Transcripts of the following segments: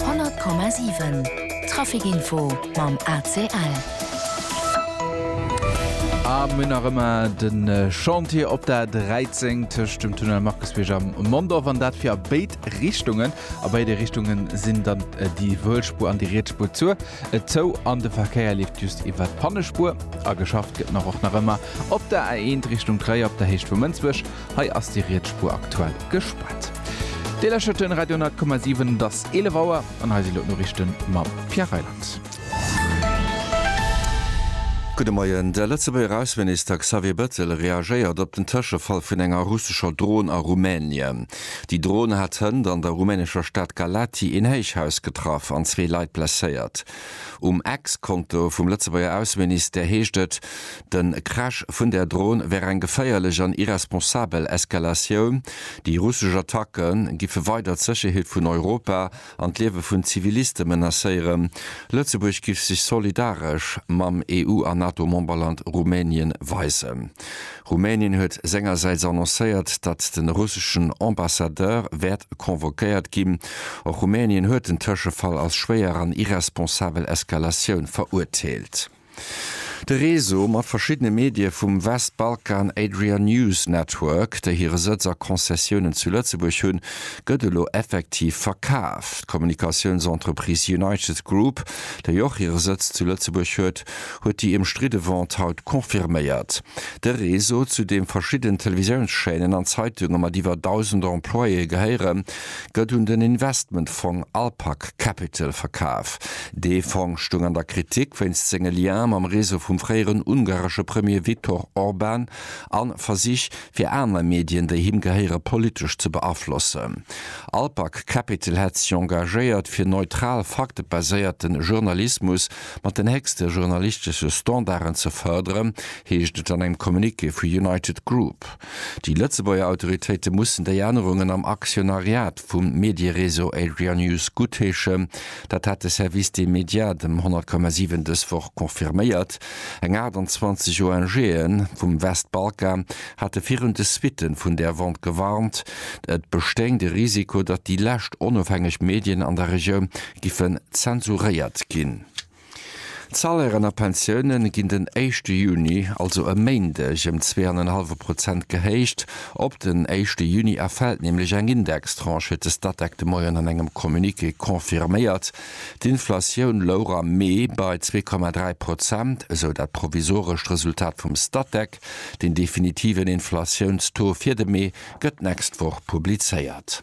100,7 Trafic Info mam ACL. A mir nach ëmmer de Chantier op der 13 tëscht dem Tunnel Markusbierg am Mondorf an dat fir a béid Richtungen. A béide Richtunge sinn dann äh, déi Wëllspur an déi Rietspur zu äh, zou an de Verkéier leeft just iwwer d'Pannespur. A geschafft gëtt nach och nach ëmmer op der A1 Richtung Tréier op der Héicht vu Mënsbech. Hei ass déi Rietsspuer aktuell gespaart. Dir läschert den Radio 10,7, et ass 11 Auer an hei sinn elo d'Noriichten mam Pierre Reyland. Gudde Moien. De Lëtzebuerger Ausseminister Xavier Bettel reagéiert op den Tëschefall vun enger russescher Dron a Rumänien. Déi Dron hat hënt an der rumänescher Stad Galaţi een Héichhaus getraff an zwee Leit blesséiert. Um Ex-Konto vum Lëtzebuerger Ausseministère heescht et, De Crash vun där Dron wär eng geféierlech an irresponsabel Eskalatioun. Déi russesch Attacke giffe weider d'Sécherheet vun Europa an d'Liewe vun Ziviliste menacéieren. Lëtzebuerg giff sech solidaresch mam EU a NATO-Memberland Rumänien weisen. Rumänien huet sengersäits annoncéiert, datt de russeschen Ambassadeur wäert convoquéiert ginn. Och Rumänien huet den Tëschefall als schwéier an irresponsabel Eskalatioun verurteelt. De Réseau mat verschiddene Medie vum Westbalkan Adria News Network, déi hire Sëtz a Konzessiounen zu Lëtzebuerg hunn, gëtt elo effektiv verkaf. D'Kommunikatiounsentreprise United Group, déi och hire Sëtz zu Lëtzebuerg huet, huet déi ëmstridde Vente haut confirméiert. De Réseau, zu deem verschidden Televisiounschaînen an Zeitunge mat iwwer 1.000 Employéë gehéieren, gëtt un den Investmentfong Alpac Capital verkaf. Dee Fong stoung an der Kritik wéinst senge Liens mam Réseau vum fréieren ungaresche Premier Viktor Orban a Versich fir aner Medien, déi him gehéiere politesch ze beaflossen. Alpac Capital hätt sech engagéiert fir neutral faktebaséierte Journalismus mat den héchste journalistesche Standarden ze fërderen, heescht et an engem Communiqué vu United Group. Déi Lëtzebuerger Autoritéite mussen déi Ännerungen am Aktionariat vum Mediereseau Adria News guttheeschen. Dat hat de Service des médias dem 100,7 dës Woch confirméiert. Eng 28 ONGe vum Westbalkan hate virun de Suitten vun där Vente gewarnt. Et bestéing de Risiko, datt déi lescht onofhängeg Medien an der Regioun giffen zensuréiert ginn. D'Salairen a Pensioune ginn den éischte Juni, also e Méindeg, ëm zwee an en hallwe Prozent gehéicht. Op den éischte Juni erfält nämlech eng Indextranche, huet de Statec de Moien an engem Communiqué confirméiert. D'Inflatioun louch am Mee bei zwee Komma dräi Prozent, esou dat provisorescht Resultat vum Statec. Den definitiven Inflatiouns-Taux fir de Mee gëtt d'nächst Woch publizéiert.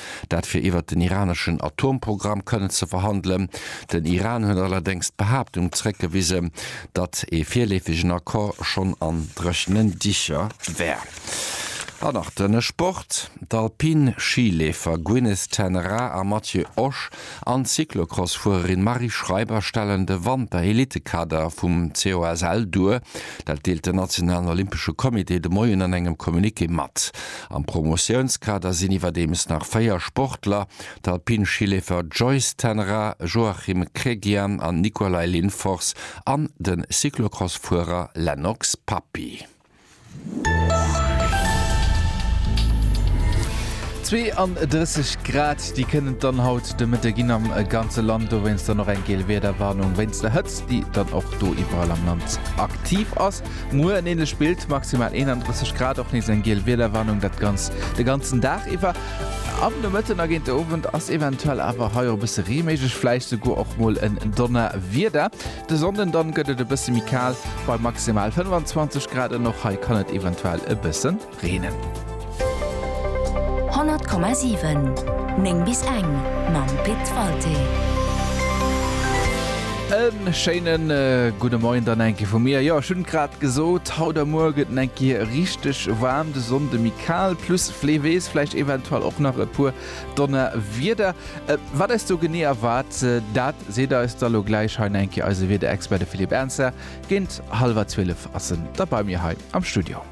dat fir iwwert den iraneschen Atomprogramm kënnen ze verhandelen. Den Iran huet allerdéngs d'Behaaptung zréckgewisen, datt ee virleefegen Accord schonn an dréchenen Dicher wär. An nach de Sport, D'Alpin-Schi-Leefer Gwyneth Ten Raa a Matthieu Osch an d'Cyclocross-Fuererin Marie Schreiber stellen de Wanter-Elitekader vum COSL duer. Dat deelt den nationalen Olympesche Comité de Moien an engem Communiqué mat. Am Promotiounskader sinn iwwerdeems nach véier Sportler, d'Alpin-Schileefer Joyce Tenra, Joachim Kregian an Nicolay Linfors an de Cyclocross-Fuerer Lennox Papi. 32 Grad, déi kënnen et dann haut de Mëtte ginn am ganze Land, dowéinst dann och eng geel Wiederwarnung wéinst der Hëtzt, déi dann och do iwwerall am Land aktiv ass. Muer en ähnlecht Bild, maximal 31 Grad, och nees eng geel Wiederwarnung, dat Ganzt de ganzen Dag iwwer. Am Nomëtten a géint de Owend ass eventuell awer hei och e bësse Ree méiglech, vläicht souguer och mol en Donnerwieder. De Sonnden dann gëtt et e bësse méi kal bei maximal 25 Grad an och hei kann et eventuell e bësse reenen. 100,7 9 bis eng mam Pit Walté. E schéinen gudde Moien dann enke vu mir. Jo ech hunn et grad gesot, haut a muer gëtt en enke richteg waarm, de Sonnde méi kal plus fleewees, vläicht eventuell och nach e puer Donnerwieder, wat eis do genee erwaart, dat seet eis da lo gläich hei enke eise Wiederexpert, de Philippe Ernzer. Géint hallwer 12 ass en da bei mir hei am Studio.